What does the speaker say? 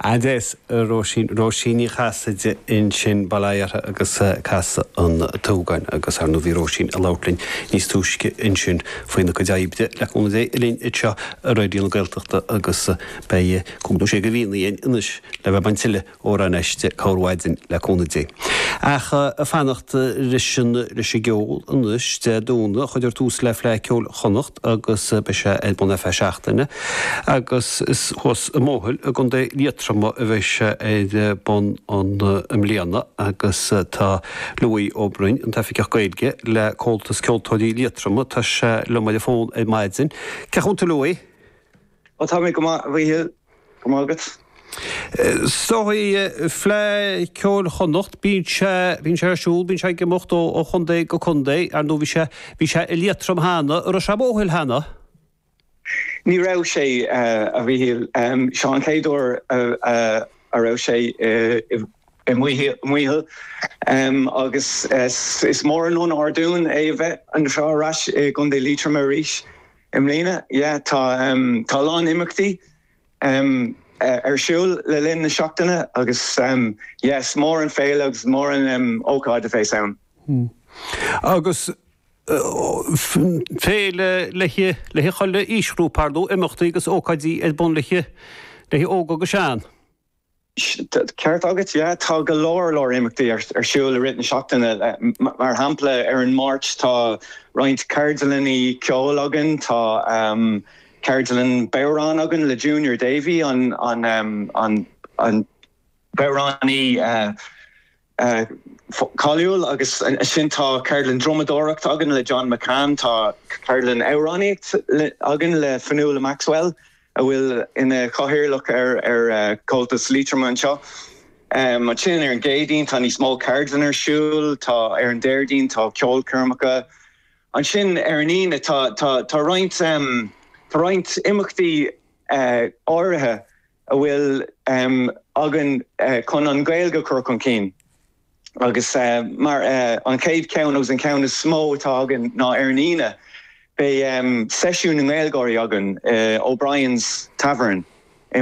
Agus Róisín, Róisín Ní Chasaide ansin, Baile Átha agus Casadh an tSúgáin, agus ar ndóigh bhí Róisín ag labhairt linn níos túisce ansin faoina cuid oibre le cúnamh Dé linn anseo ar Raidió na Gaeltachta agus beidh cúpla, sé go mbeidh againn anois le bheith baint tuilleadh Amhráin aisti, amárach ar maidin le cúnamh Dé. Ach fanacht leis an, leis an gceol anois, Dé Domhnaigh cuirfear tús le Fleadh Cheoil Chonnacht agus beidh sé ar bun ar feadh seachtaine, agus is thuas i Maothail i gContae Liatroma a bheidh sé ar bun i mbliana agus tá Louis Ó Broin, an tOifigeach Gaeilge le Comhaltas Ceoltóirí Liatroma, tá sé liom ar an bhfón ar maidin. Cén chaoi a bhfuil tú Louis? Ó tá mé go maith a Mhichíl. Go maith agat. So tá Fleadh Cheoil Chonnacht, bíonn sé, bíonn sé ar siúl, bíonn sé ag imeacht ó, ó chontae go contae. Ar ndóigh bhí sé, bhí sé i Liatroim cheana, raibh sé i Maothail cheana? Ní raibh sé a Mhíchíl, seo an chéad uair a, a, a raibh sé i, i Maothail, Maothail agus is, is mór an onóir dúinn é a bheith anseo ar ais i gContae Liatroma arís. I mbliana, yeah, tá, tá a lán imeachtaí ar siúl le linn na seachtaine agus is mór an féile agus is mór an ócáid a bheas ann. Agus féile le haghaidh chuile aoisghrúpa, imeachtaí agus ócáidí ar bun le haghaidh, le haghaidh óg agus sean. Ceart agat, yeah. Tá go leor leor imeachtaí ar siúl i rith na seachtaine. Mar shampla, ar an Máirt tá roinnt ceardlannaí ceoil againn. Tá ceardlann bodhráin againn le Junior Davey, an bodhránaí. cáiliúil agus ansin tá ceardlann drumadóireacht againn le John McCann, tá ceardlann amhránaíocht againn le Fionnuala Maxwell a bhfuil ina cathaoirleach ar Chomhaltas Liatroma anseo. Ansin ar an gCéadaoin tá níos mó ceardlann ar siúl, tá ar an Déardaoin tá ceolchoirmeacha. Ansin ar an Aoine tá, tá, tá roinnt, tá roinnt imeachtaí áirithe a bhfuil againn chun an Ghaeilge a chur chun cinn agus mar an chéad cheann agus an ceann is mó atá againn ná ar an Aoine beidh seisiún na nGaeilgeoirí againn i O'Brien's Tavern i